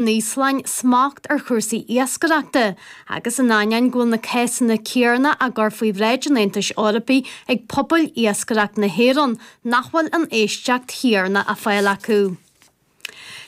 an Íoslainn smacht ar chúrsaí iascaireachta agus in ainneoin go bhfuil na cásanna céanna á gcur faoi bhráid an Aontais Eorpaigh ag pobail iascaireacht na hÉireann nach bhfuil an éisteacht chéanna á fáil acu.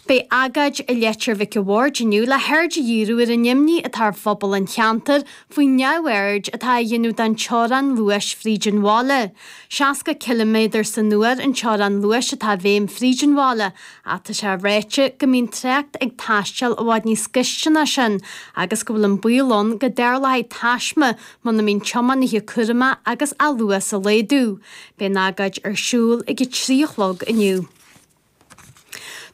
Beidh agóid i Leitir Mhic a' Bhaird inniu le haird a dhíriú ar an imní atá ar phobal an cheantair faoin neamhaird atá a dhéanamh den teorainn luais fríd an bhaile. 60 ciliméadar san uair an teorainn luais atá i bhfeidhm fríd an bhaile, ach tá sé ráite go mbíonn trácht ag taisteal i bhfad níos gaiste ná sin agus go bhfuil an baol ann go dtarlóidh taisme muna mbíonn tiománaithe cúramach agus á luas a laghdú. Beidh an agóid ar siúl ag a trí a chlog inniu.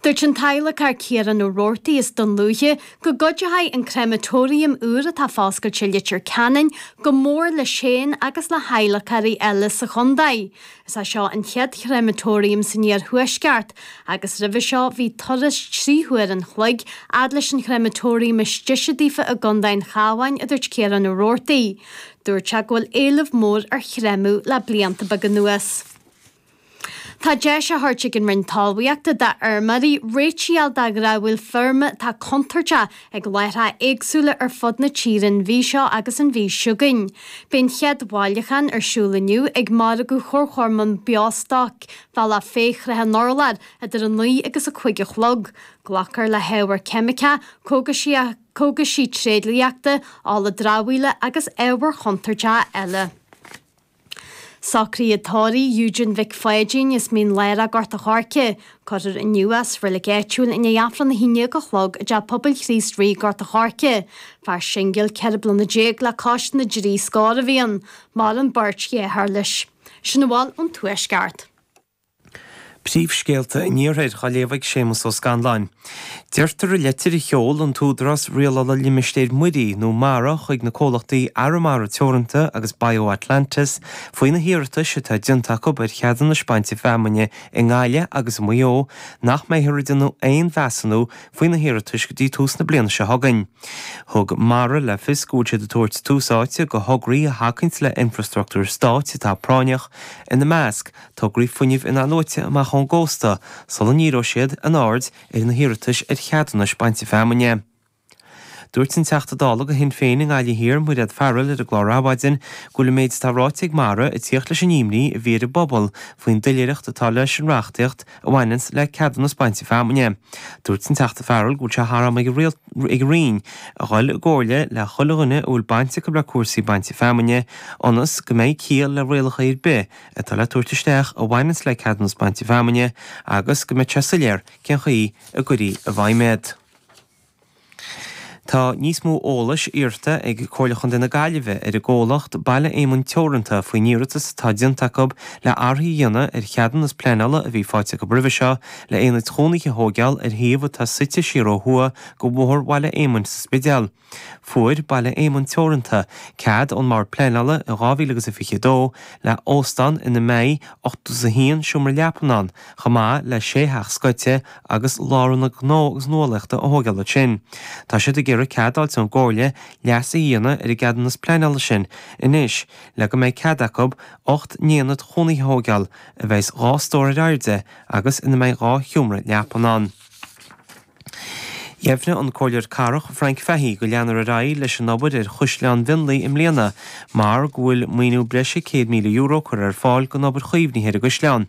Dúirt an t-adhlacár Ciarán Ó Roarty as Dún Lúiche go gcuideoidh an créamatóiriam úr atá foscailte i Leitir Ceanainn go mór leis féin agus le hadhlacóirí eile sa chontae. Is é seo an chéad chréamatóiriam san iarthuaisceart agus roimhe seo bhí turas trí huair an chloig fhad leis an chréamatóiriam is deise daofa i gContae an Chabháin, a dúirt Ciarán Ó Roarty. Dúirt sé go bhfuil éileamh mór ar chréamadh le blianta beaga anuas. Tá deis á thabhairt ag an Roinn Talmhaíochta d'fheirmeoirí réitiú de dhramhaíl feirme atá contúirteach ag láithreacha éagsúla ar fud na tíre an mhí seo agus an mhí chugainn. Beidh an chéad bhailiúchán ar siúl inniu ag Margadh Chomharchumann Beostoic Bhaile Bealach Féich-Srath an Urláir idir 9 agus 5 a chlog. Glacfar le hábhar ceimiceach, cógais, cógais tréidliachta, ola dramhaíola agus ábhair chontúirteacha eile. Socruithe tórraimh Eugene Mhic Pháidín as Mín Lárach, Gort an Choirce, cuirfear inniu sa reilig áitiúil i ndiaidh Aifreann a hAon Déag a Chlog i dTeach Pobail Chríost Rí, Gort an Choirce. Fear singil ceithre bliana déag le cois na dtrí scór a bhí ann. Maireann beirt dheartháir leis. Sin a bhfuil ón Tuaisceart. Príomhscéalta an iarthair á léamh ag Séamus Ó Scanláin. Deirtear i leitir a sheol an tÚdarás Rialála Limistéir Muirí, nó mara, chuig na comhlachtaí Arramara Teoranta agus BioAtlantis faoi na hiarratais atá déanta acu ar cheadúnais bainte feamainne i nGaillimh agus i Maigh Eo nach mbeifear ag déanamh aon mheasúnú faoi na hiarratais go dtí tús na bliana seo chugainn. Thug mara le fios go bhfuil siad ag tabhairt tús áite do thograí a thacaíonns le infrastruchtúr Stáit atá práinneach, ina measc, tograí fuinnimh in-athnuaite amach ón gcósta sula ndíreodh siad a n-aird ar na hiarratais ar cheadúnais bainte feamainne. Dúirt an Teachta Dála do Shinn Féin i nGaillimh Thiar, Mairéad Farrell ar an gclár Adhmhaidin go bhfuil an méid atá ráite ag Mara ag tíocht leis an imní a bhí ar an bpobal faoin doiléireacht atá leis an reachtaíocht a bhaineanns le ceadúnas bainte feamainne. Dúirt an Teachta Farrell go bhfuil sé thar am ag an Roinn a dhul i gcomhairle le chuile dhuine a bhfuil baint acu le cúrsaí bainte feamainne ionas go mbeidh ciall le rialacha ar bith atá le tabhairt isteach a bhaineanns le ceadúnas bainte feamainne agus go mbeadh sé soiléir cén chaoi a gcuirfí i bhfeidhm iad. Tá níos mó eolais iarrta ag Comhairle Chontae na Gaillimhe ar an gcomhlacht Baile Éamoinn Teoranta faoin iarratas atá déanta acu le athruithe a dhéanamh ar cheadúnas pleanála a bhí faighte acu roimhe seo le haonaid chónaithe a thóigeáil ar shuíomh atá suite siar ó thuaidh de Bhóthar Bhaile Éamoinn sa Spidéal. Fuair Baile Éamoinn Teoranta cead ón mBord Pleanála in 2022 le h-óstán ina mbeidh ochtó is a haon seomra leapan ann, chomh maith le sé theach scoite agus lárionad gnó agus nuálaíochta a thóigeáil ansin. Tá siad ag iarraidh cead a fháilt ón gComhairle leasú a dhéanamh ar an gceadúnas pleanála sin anois le go mbeidh cead acu ocht n-aonad chónaithe a thóigeáil a bheidhs dhá stór ar airde agus ina mbeidh dhá sheomra leapan ann. Dheimhnigh an Comhairleoir Cathrach Frank Fahey go leanfar ar aghaidh leis an obair ar Chaisleán Mhionlaigh i mbliana mar go bhfuil maoiniú breise €100,000 curtha ar fáil don obair chaomhnaithe ar an gcaisleán.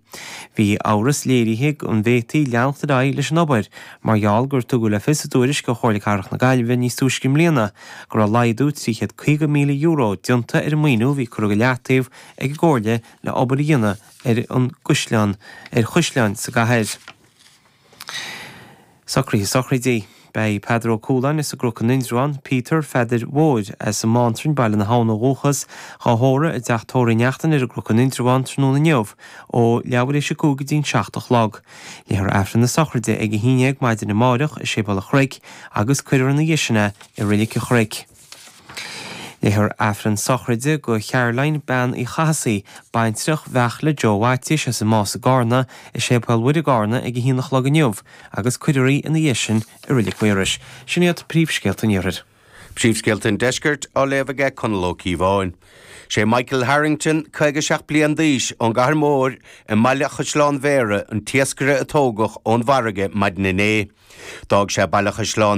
Bhí amhras léirithe an bhféadfaí leanacht ar aghaidh leis an obair mar gheall gur tugadh le fios i dtuairisc ó Chomhairle Cathrach na Gaillimhe níos túisce i mbliana go raibh laghdú €350,000 déanta ar an maoiniú a bhí curtha go leataobh ag an gComhairle le obair a dhéanamh ar an gcaisleán ar chaisleáin sa gcathair. Socraithe sochraidí. Beidh Peadar Ó Cúláin as an gCnoc in Indreabhán, Peter Pheadair Mhóir as an mBánrainn, Baile na hAbhann ó dhúchas, dhá thórramh i dTeach Tórraimh Uí Neachtain ar an gCnoc in Indreabhán tráthnóna inniu ó leathuair tar éis a cúig go dtí'n seacht a chlog. Léifear Aifreann na sochraide ag a haon déag maidin amáireach i Séipéal an Chnoic agus cuirfear ina dhiaidh sin é i Reilig an Chnoic. Léifear Aifreann sochraide do Charoline, Bean Uí Chathasaigh, baintreach Bheartla Joe Mhaitiais as an Más i gCarna, i Séipéal Mhuire, Carna ag a haon a chlog inniu agus cuirfear í ina dhiaidh sin i Reilig Mhaorais. Sin iad príomhscéalta an Iarthair. Príomhscéalta an Deiscirt á léamh ag Conall Ó Cíobháin. Sé Michael Harrington, 57 bliain d'aois, ón gCathair Mhóir i mBaile Chaisleáin Bhéarra, an t-iascaire a tógadh ón bhfarraige maidin inné. D'fhág sé Baile Chaisleáin.